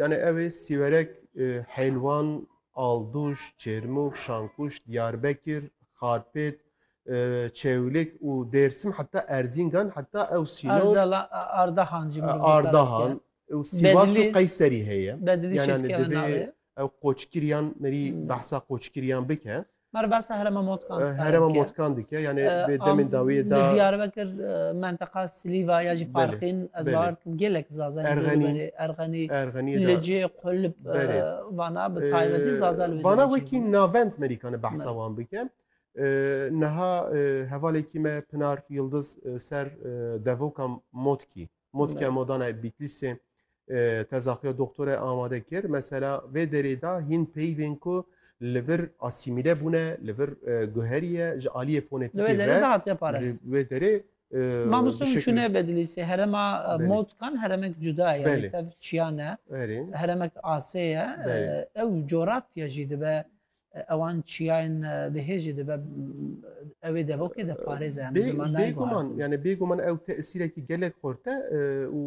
Yani ew ê sîwerek Hêlwan, Alduş, Çêrmûk, Şankuş, Diyarbekir, Xarpêt, Çewlik û Dêrsim heta Erzîngan heta ew sînor Ardahan jî Ardahan û Sîwas û Qeyserî heye. Yani divê ew qoçkiriyan merî behsa qoçkiriyan bike. Meribasa herema Motkan dike. Herema Motkan dike yani bi demên dawiyê da. Diyarbekir menteqa Silîva ya jî farqîn ez bahar kim gelek zazen Erxenî Erxenî Erxenî Licê Qulb vana bi taybetî zazen Vana wekî navend merîkane behsa wan bike. Niha hevalekî me Pinar Yildiz ser devoka Motkî Mod ke modanayê Bîtlîsê teza xwe ya doktorê amade kir, mesela vê derê de hîn peyvên ku li vir asîmîle bûne, li vir guheriye ji aliyê fonetîkê ve. Li vê derê de hatiye parastin. Li vê derê Mamoste hûn çûne Bedlîsê, herema Modkan heremek cuda ye, lê tev çiya ne. Heremek asê ye. Ew coğrafya jî dibe ewan çiyayên bihêjî dibe ew ê devokê de parêze yani zimanayê guman yani bê guman ew tesîrekî gelek xorte û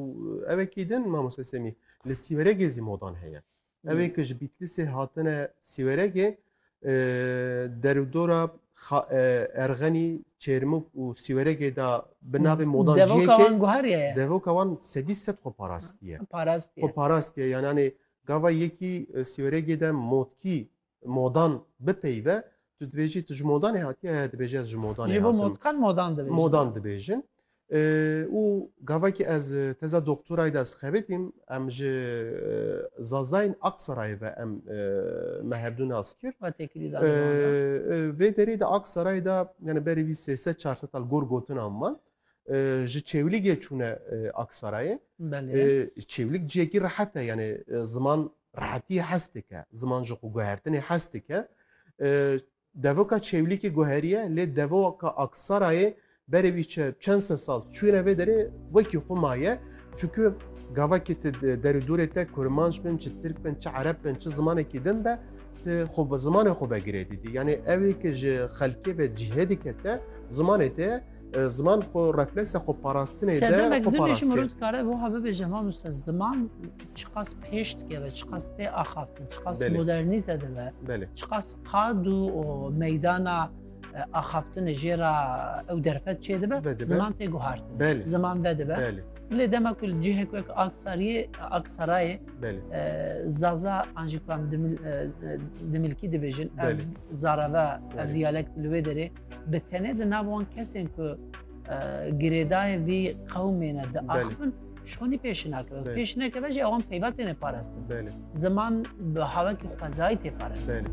ewê kî din mamoste semî li sîweregê zî modan heye ewê ki ji bîtlisê hatine sîweregê derûdora erxenî çêrmuk û sîweregê da bi navê modan devoka wan guheriye devoka wan sedî sed xwe parastiye xwe parastiye yananê Gava yekî sîwregê de motkî, modan bipeyve, tu dibêjî tu ji modanê hatî ye, dibêjî ez ji modanê hatim. Ji bo motkan modan dibêjin. Modan dibêjin. Û gavakî ez teza doktorayê de ez xebitîm, em ji Zazayên Aksarayê ve em me hevdu nas kir. We tê kirî daliman de. Vê derê de Aksarayê de yani berî vî sê sed çar sed sal gor gotinan man. ji Çêwlîgê çûne Aksarayê. Çêwlîg ciyekî rehet e yanî ziman rehetiyê hes dike, ziman ji xwe guhertinê hes dike. Devoka Çêwlîgê guheriye lê devoka Aksarayê berê wî çi çend se sal çûne vê derê wekî xwe maye. Çunku gavakê ti derû dûrê te kurmanc bin, çi tirk bin, çi ereb bin, çi zimanekî din be ti xwe bi zimanê xwe vegirê dîdî. Yanî evê ki ji xelkê ve cihê dike te zimanê te ye. Ziman xwe refleksa xwe parastinê de Sedem xwe dibêjim parastin. rût kare bu ha bibêje ma nuse ziman çiqas pêş dikeve, çiqas tê axaftin, çiqas Belê. modernîze dibe, Belê. çiqas qad û o meydana e, axaftinê jê ra ew derfet çê dibe, Vedibe. ziman tê guhartin. Belê. Ziman vedibe. Belê. Lê dema ku li cihek wek Aksariyê, Aksarayê Belê. e, Zaza an jî ku em dimil- e, e, dimilkî dibêjin, ev Belê. zareve, ev Belê. diyalekt li wê derê Bi tenê di nav wan kesên ku girêdayên vî qewmê ne diaxivin şonî pêş nakirin. Pêş nekeve jî ewan peyva têne parastin. Ziman bi hawekî xwezayî tê parastin.